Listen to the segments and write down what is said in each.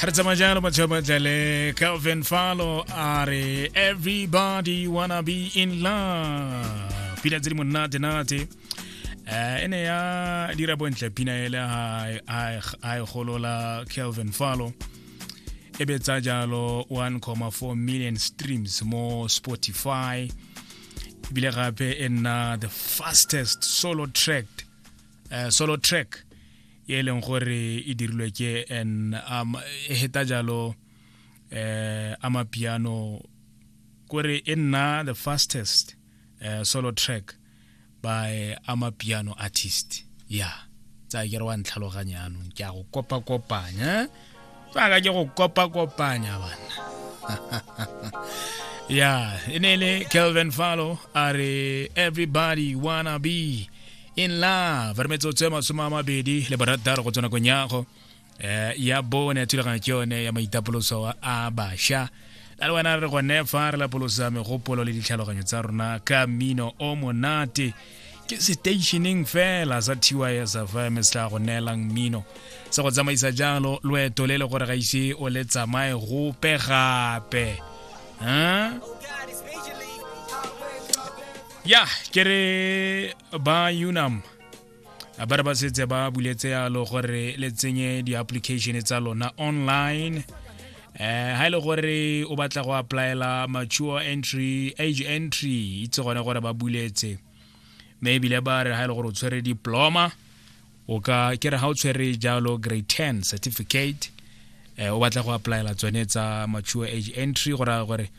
re tsamaya jalo batšhabajale calvin falo a re everybody wanna be in love pina tse di monate-nate um e ne ya dira bontle pina ele a e golola calvin falo e betsa jalo 1,4 million streams mo spotify ebile gape e nna the fastest solo track uh, solo track e leng gore e dirilwe ke an um, e heta jalo eh amapiano kore e nna the fastest uh, solo track by amapiano artist ya yeah. tsa ke re wa ntlhaloganya anong ke a go kopa kopanya tsaka ke go kopa-kopanya bana ya e ne e le kelvin falo a re everybody wanna be in love re metsotso e masome a mabedi le borataro go tswa nakong yago eh, ya bone ya thulaganyo ke yone ya maitapoloso a basha a le wena re gone fa re lapolosa megopolo le ditlhaloganyo tsa rona ka mmino o monate ke stationeng fela sa tys fm se tla go neelang mmino se go tsamaisa jalo loeto le le gore ga ise o le tsamaye gope gape ya ke re ba unam ba re ba setse ba buletse yalo gore le tsenye di-application tsa lona online eh ha ile e gore o batla go applyela mature entry age entry itse gone gore ba buletse mme ebile ba re ha ile e gore o tshwere diploma o ka ke re ha o tshwere jalo grade 10 certificate eh o batla go applyela tsone tsa mature age entry go raya gore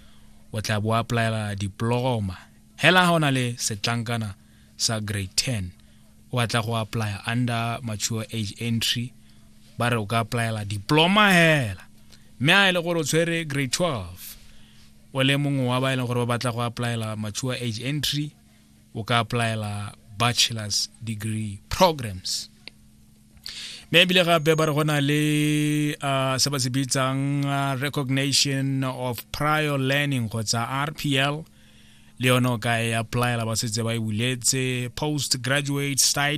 o tla bo applyela diploma hela ha o na le setlankana sa grade 10 o batla go apply under mature age entry ba re o ka applyela diploma hela mme a e le gore o tshwere grade 12 o le mongwe wa ba e leng gore ba batla go applyela mature age entry o ka applyela bachelor's degree programs mme ebile gape ba re go na le uh, se ba se bitsang uh, recognition of prior learning kgotsa rpl le yone o ka e applyela ba setse ba e buletse post graduate study